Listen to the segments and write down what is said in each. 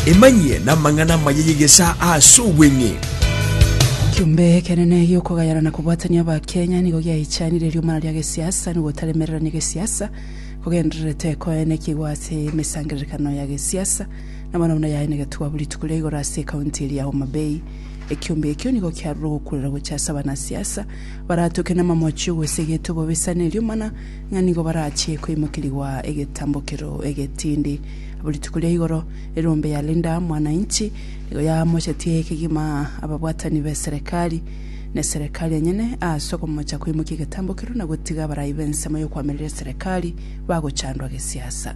Emanyie namang'ana amaya y'egesaa ase obweng'e. Ekiombe ekenene gi'okogayana na kobwatania Abakenya nigo giaichanire eriomana ria gesiasa na ogotaremererania gesiasa kogendererete koenekigwa ase emesangererekano ya gesiasa na bono buna yaye negetwabu rituko ria igoro ase ekaunti eria ya Homa Bay. Ekiombe ekio nigo kiarure ogokurera gocha ase abanasiasa baratoke namamochi ogosegetia obobisa na eriomana ng'a nigo barachie koimokerigwa egetambokero egetindi. Abo rituko ria igoro erombe ya Linda Mwananchi nigo yamochetie kegima ababwatani b'eserekari na eserekari enyene ase okomocha koimokia egetambokero na gotiga abarai b'ensemo y'okoamerera eserekari bagochandwa gesiasa.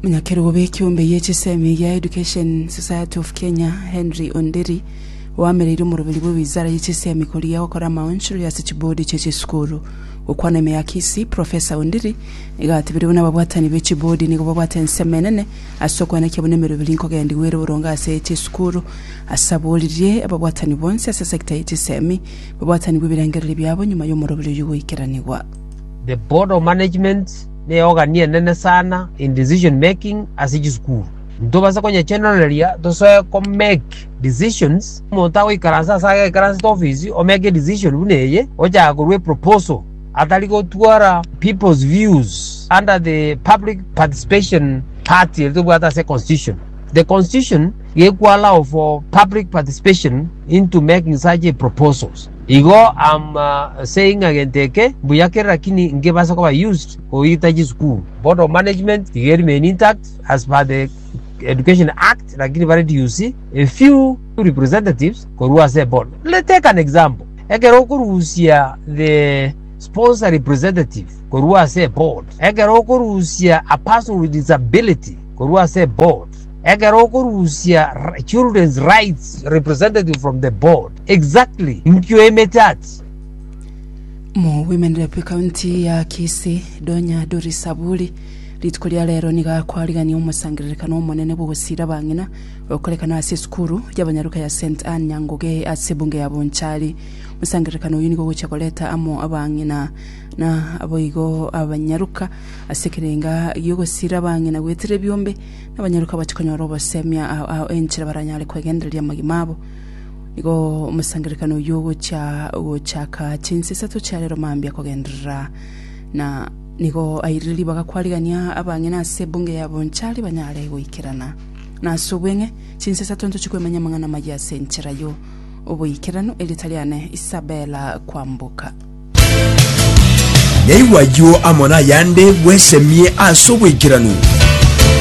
Omonyakerogo bw'ekeombe gie chisemi gia Education Society of Kenya, Henry Onderi, oamereire omoroberi bwe wizara ye chisemi korigia gokora amaonchori ase chibodi chie chisukuru. Gokwana ime ya Kisii, Profesa Ondiri nigo atebirie buna ababwatani be chibodi nigo babwate ensemo enene ase okwenekia buna emeroberi nkogendigwa ere boronge ase chisukuru. Ase aboririe ababwatani bonsi ase sector ye chisemi babwatanigwe ebirengererio biabo nyuma y'omoroberi oyio goikeranigwa. The Board of Management Neogani enene sana in decision making ase chisukuru. Ntobase konyechenoreria tosoe ko make decisions. Omonto agoikaransa ase agekaransete ofisi o make decision buna eye, ochaka korua eproposal atari gotwara people's views under the public participation part eri tobwate ase constitution. The constitution gekwo allow for public participation into making such a proposals. Igo ama ase ing'a gento eke mbuya kere lakini nkebasa koba used goita chisukuru. Board of management iga eri main intact as per the education act lakini bare DUC a few representatives korwa ase board. Let's take an example ekero okorusia the sponsor representative korwa ase board, ekero okorusia a person with disability korwa ase board, ekero okorusia children's rights representative from the board. Exactly nkio ime chat. Mowomenire bwe county ya Kisii, Donya Duri Saburi, rituko ria rero nigo akwarigania omosangererekano omonene bw'ogosiira abang'ina, okorekana ase esukuru y'abanyaruka ya St Anne Nyangoge ase ebunge ya Bonchari. Omosangererekano oyio nigo ogochia koreta amo abang'ina na aboigo abanyaruka ase ekerenga gi'ogosiira abang'ina goetera ebiombe, na abanyaruka bache konyora obosemia enchera baranyare kwegendereria amagima abo. Nigo omosangererekano oyio ogochia gochaka chinsa isato chia rero mambia kogenderera na nigo airire ribaga kwarigania abang'ina ase ebunge ya Bonchari banyare goikerana. Na ase obweng'e, chinsa isato ntochie kwemanyia amang'ana amayia ase enchera yo oboikeranu, erieta riane Isabella Kwamboka. Naigwa ayio amo nayande bwesemie ase oboikeranu.